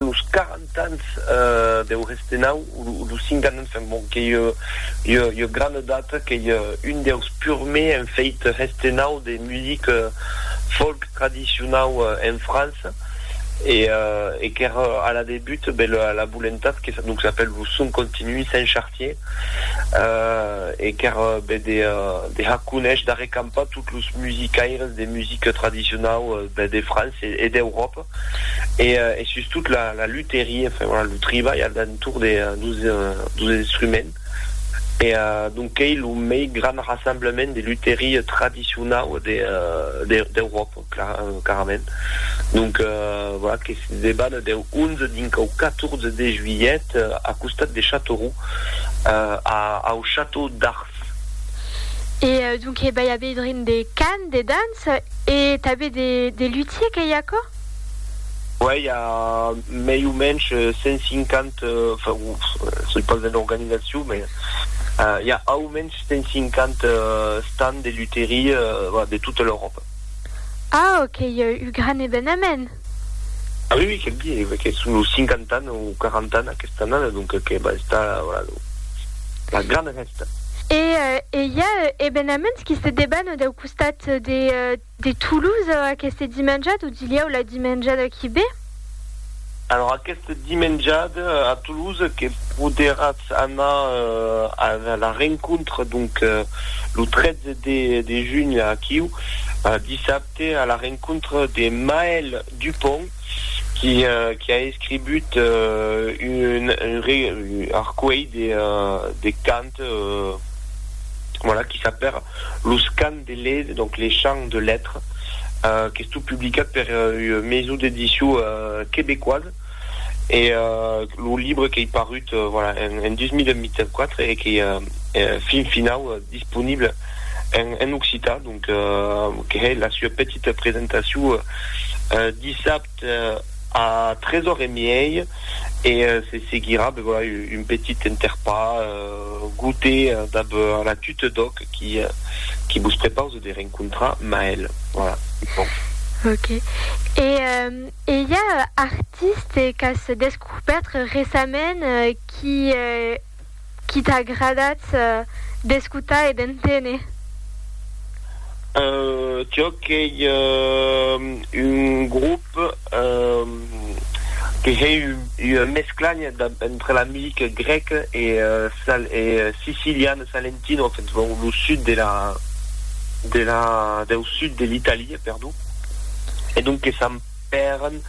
los quaranta ans deu Restenau, o los cinquanta ans, enfin bon, qu'ei ua grana edat, qu'ei un deus purmei en fèit Restenau de music folk tradicionau en França, e qu'ère a la debut la volentat que donc s'apèle lo Son Continu Saint Chartier, e qu'ère de har conéisher, d'arrecampar tot los musicaires de music tradicionau de França e d'Euròpa. e e sustot la la lutherie enfin voilà lo tribalh al d'entour de dos dos instruments e donc qu'ei lo mei grand rassemblement de lutherie tradicionau de de d'Euròpa clar carament donc voilà que se deban deu 11 dinc au 14 de juilhet a costat de Châteauroux a au château d'Ars. E donc he bai a veir drin de cant, de danç? E tanben de lutier qu'ei aquò? Uèi, i a mei o mensh 150, soi pas en organizacion, mès i a au mensh 150 stands de luterie de tota l'Euròpa. Au, qu'ei un gran evenament! Ah oui oui quel biais ve que son lo cinquantana o quarantana aquesta annada donc que va estar voilà lo la grana fèsta. E e i a ebenaments qui se debanent au costat de de Toulouse aqueste dimenjada o dilhèu la dimenjada qui ve? Alors aqueste dimenjada a Toulouse que poderàtz anar a la rencontre donc lo 13 de de junh aquiu dissabte Te a la rencontre de Maël Dupont qui qui a escribut un arcueil de de cant voilà qui s'appère Los cants de led donc les chants de lettre qu'estó publicat per ua maison d'édition québécoise. e lo libre qu'ei parut en 2024 e qu'ei fin finau disponible en occitan, donc que hè la sua petita presentacion dissabte a 3 ore e miei e se seguirà un petit enterpar goûter dab la Tute d'Òc qui vos prepause de rencontrar Maëlle. Voilà. Ok. E E i a artiste qu'as descubèrt recament qui qui t'a agradat d'escotar e d'enténer? Jo qu'ei un grop que hei ua mescla entre la music grec e sicilian, salentino, lo sud de la deu sud de l'Italia, perdon. e donques Sant Pèren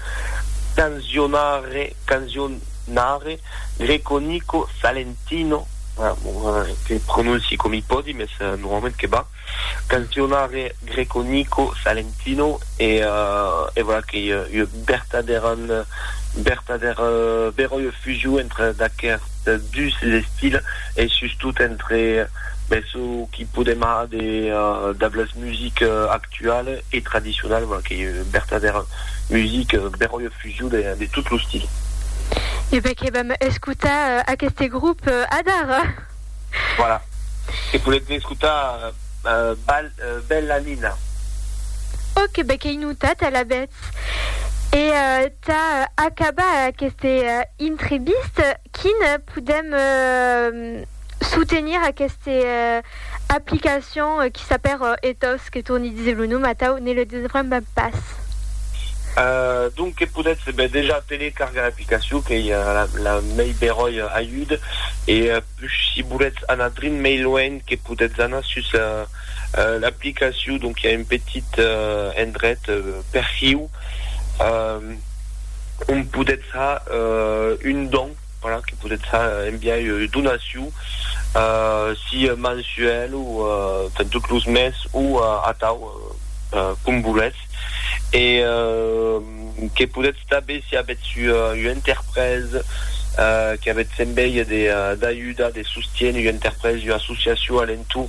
canzionare, canzionare, Greco, Nico, Salentino, que prononci com i pòdi, mes normalment que va, canzionare, Greco, Nico, Salentino, e e voilà qu'ei ua bertadèra, bertadèra, bèra ua fusion entre d'aquerts dus estils e sustot entre, ben, çò qui podem har de, dab las musiques actualas, actual e tradicional, voilà qu'ei ua vertadèra musica beròia fusion de de tot lo stil. E ben que vam escotar aqueste grop adara. Voilà, que podètz escotar Bal Bella Nina. Ok, ben qu'ei notat alavetz. E tà acabar aqueste intrevista, quin podèm. soutenir aqueste aplicacion qui s'apèr Ethos, que torni díser lo nom atau ne le desbremba pas. Donc que podètz ben dejà telecargar l'aplicacion qu'ei la mei beròia ajud e push si volètz anar drin mei luenh que podètz anar sus l'aplicacion donc i a un petit endret perfiu ont podètz ha un don. Voilà, que podètz enviar ua donacion, sia mensuèl o per tot los mes o atau, com volètz. E que podètz tanben, si avètz ua interpresa, que avètz envèi d'ajudar, de sostiéner ua interpresa, ua associacion a l'entorn,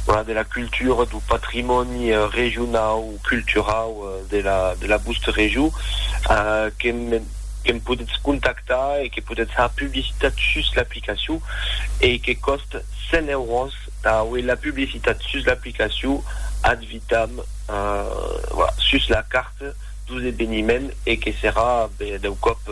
voilà, de la cultura, dau patrimòni regionau o culturau de la vòsta region, que me. que'm podetz contactar e que podetz har publicitat sus l'aplicacion e que còst 100 euros tà auer la publicitat sus l'aplicacion ad vitam sus la carte dos eveniments e que serà bèth dau còp